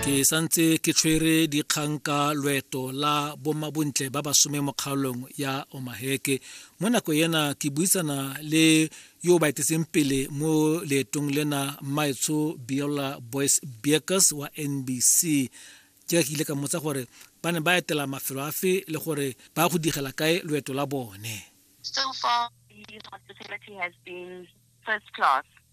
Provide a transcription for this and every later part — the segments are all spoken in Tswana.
ke santse ke tshwere dikgang ka loeto la bomabontle ba basome mo kgaolong ya omaheke mo nako ena ke buisana le yo ba etetseng pele mo leetong lena mmaetsho biola boys beakers wa nbc ke ke ile ka motsa gore ba ne ba etela mafelo afe le gore ba go digela kae loeto la bone so far the hospitality has been first class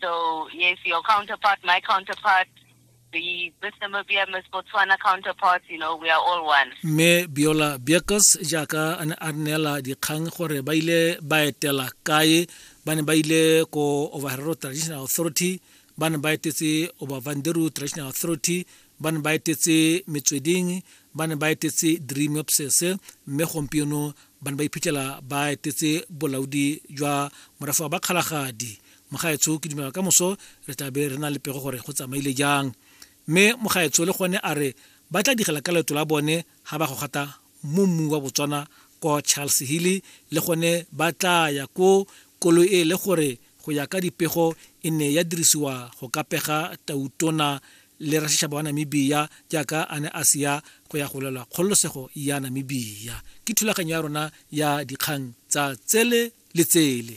So yes, your counterpart, my counterpart, the Miss Namibia, Miss Botswana counterparts, you know, we are all one. mme biola biakes jaaka a ne a neela dikgang gore ba ile ba etela kae ba ne ba ile ko overhero traditional authority ba ne ba etetse obavanderu traditional authority ba ne ba etetse metsweding ba ne ba etetse dream obses mme gompieno ba ne ba iphitlhela ba etetse bolaodi jwa morafa ba kgalagadi mogaetsho ke dumela ka moso re tla be re na le pego gore go tsamaile jang mme mogaetsho le gone a re ba tla digela ka leeto la bone ga ba go gata mo mmu wa botswana ko charles hilly le gone ba tla ya ko koloi e le gore go ya ka dipego e ne ya dirisiwa go ka pega tautona le rasešaba wa namibia jaaka a ne a seya go ya go lwela kgololosego ya namibia ke thulaganyo ya rona ya dikgang tsa tsele le tsele